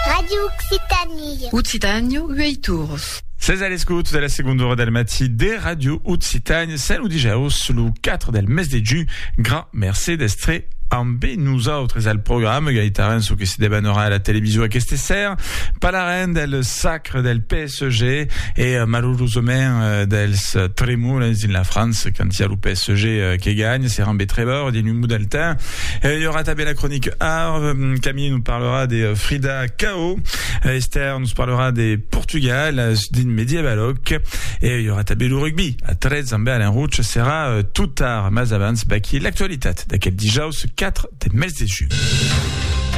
Radio Occitanie. Occitània, uei tours. Ses a l'escòt de la segonda ora del matí de Radio Occitània, sèn lo dijòus, lo 4 del mes de junh. Grand mercé d'èstre ambe nosautres al programa, gaitaran çò que se debanarà a la television aqueste ser, palarem del sacre del pes, PSG e malurosament dels tremolets dins la França quand i a lo PSG que ganha serà un betrevor dins un mot del temps e i aurà tanben la cronique Arv Camille nous parlera de Frida Kahlo Esther nous parlera de Portugal dins medievaloc e i aurà tanben lo rugby a 13 amb Alain Rouch serà tot tard mas abans baquí l'actualitat d'aquel dijaus 4 deth mes de junh.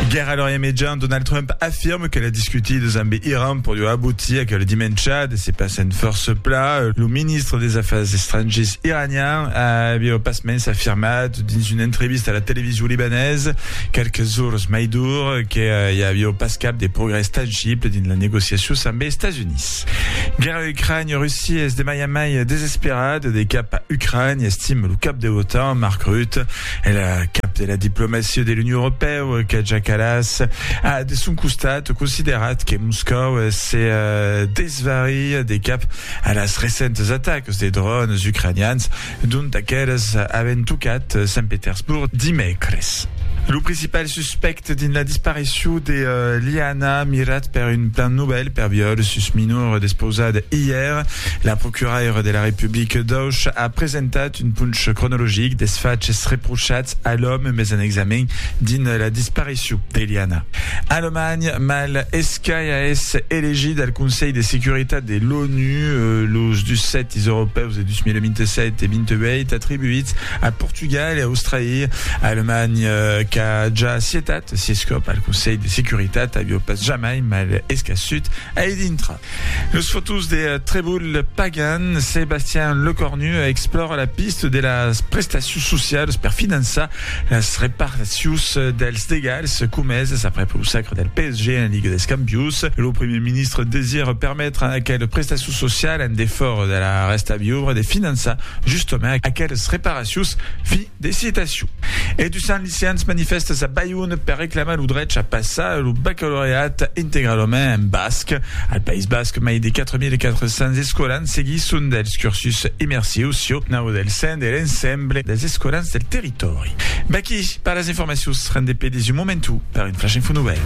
Guèrra a l'Orient Mejan, Donald Trump afirme que l'a discutides ambe Iran per ua abotir aquel dimèncha de se passe'n fòrça pla. Lo ministre des Afars Estrangiers iranian a aviá pasmens afirmat dins una entrevista a la television libanesa qualques ores mai dur que i aviá pas cap de progrès tangible dins las negociacions ambe Estats Units. Guèrra a Ucrània, Russia es de mai en mai desesperada de cap a Ucrània, estime lo cap de l'OTAN, Mark Rutte. E la cap de la diplomacia de l'Union Europèu, Kaja Kallas, a de son costat considerat que Moscòu se desvaria de cap a las recentes atacas de dròns ucranians, dont aquelas avèn tocat Sant Petersborg dimècres. Lo principal suspècte dins la disparicion de Liana, mirat per un plan novèl per viòl sus minor despausat ièr, la procuraira de la Republica d'Auch a presentat d'un ponch cronologic des faches reprochats a l'òme mes en examen dins la disparicion d'Eliana. Alemanha, mal escaia es elegit al Conselh de Securitat de l'ONU los dus sètis europèus de 2027 e 28 atribuits a Portugal e Australia. Alemanha qu'a ja sietat sies còp al Conselh de Securitat avió pas jamai mal escassut a i dintra. Los fotós de Treboul Pagan, Sébastien Lecornu explòra la pista de las prestacions socialas per finançar las reparticions dels degals comesas aprèp lo sacre del PSG en Liga dels Campions. Lo primièr ministre desira permetre a aqueles prestacions socialas en defòra de la rèsta viura de finançar justament aqueles reparacions financèras. De citacion. E du Sant Licians manifèstas a Bayon per reclamar lo drech a passar lo bacalaureat integralament en basc. Al País Basc, mai de 4.400 escolans seguisson dels cursus immersius sieu nau del sen de l'ensemble dels escolans del territòri. Vaquí per las informacions, rendé pedís un moment o per un Flash Info Nouvèl.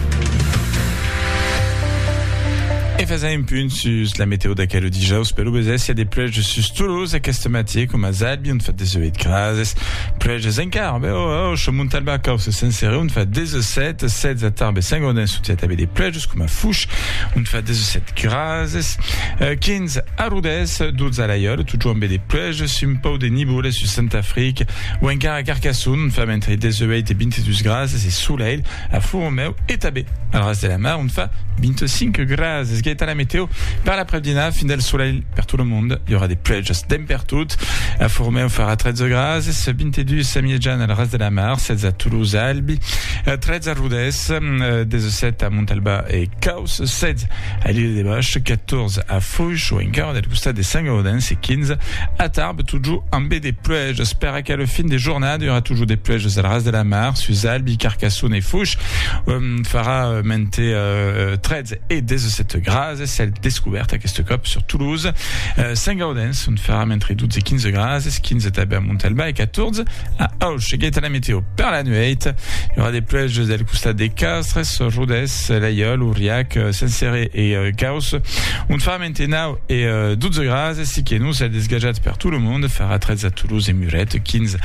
E fasèm un punt sus la meteo d'aquel dijaus, pelobesécia de pluèges sus Toulouse, Sus aqueste matièr, coma Zalbi, ont fa 18 grases, pluèges encara, ben o o o, Montalba, Caus e Senserè, ont fa 17, 16 a Tarbes e Saint-Gaudens, sot i a tanben de pluèges, coma Fuch, ont fa 17 grases, 15 a Rodés, 12 a Laiòl, totjorn ben de pluèges, un pauc de nivoles sus Sant'Afric, o encara a Carcasson, ont fa entre 18 e 22 grases, e solelh a Font-Romèu e tanben al Ras de la Mar, ont fa 25 grases. Gaëtan, la météo, per l'après-dina, fin del solelh. per tot lo monde, i aurà de pluèjas dens per tot. A Formèu farà 13 grases, 22 a Mièjan al ras de la mar, 16 a Toulouse, a Albi, 13 a Rodés, 17 a Montalbà e Caus, 16 a l'Ile de Bòsch, 14 a Foish o encara del costat de Saint-Gaudens e 15 a Tarbes, totjor ambe de pluèjas. Per aquela fin de jornada i aurà totjor de pluèjas al ras de la mar, sus Albi, Carcassona e Foish, farà mente 13 e 17 grases. e cèl descobèrt aqueste còp sur Toulouse, Sent Gaudens, ont faram entre 12 e 15 grases, 15 tanben a Montalbà e 14 a Auch. Seguèt la meteo per la nuèit, i aurà de pluèges del costat de Castres, Rodés, Laiòl, Auriac, Sensere e Gauss, ont faram entre 9 e 12 grases, siqué non cèl desgajat per tot lo monde, farà 13 a Toulouse e Muret, 15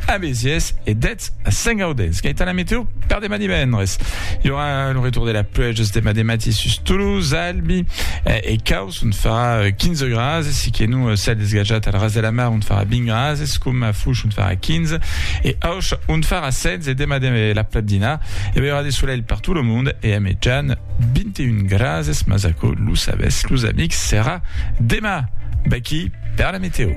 a Béziers e 10 Mat, a Saint-Gaudens. Qu'a èta la meteo per demà divendres? Hi aurà lo retour de la pluèja demà de matí sus Toulouse, Albi eh, e Caus, ont farà 15 eh, grases, si que non eh, cèl desgajat al ras de la mar, ont farà 20 grases, com a Fush, ont farà 15, e Auch, ont farà 16, e demà de la platdina, e aurà de solelh per tot lo monde, e a mejan 21 grases, mas aquò, lo sabètz, los amics, serà demà. Baquí per la meteo.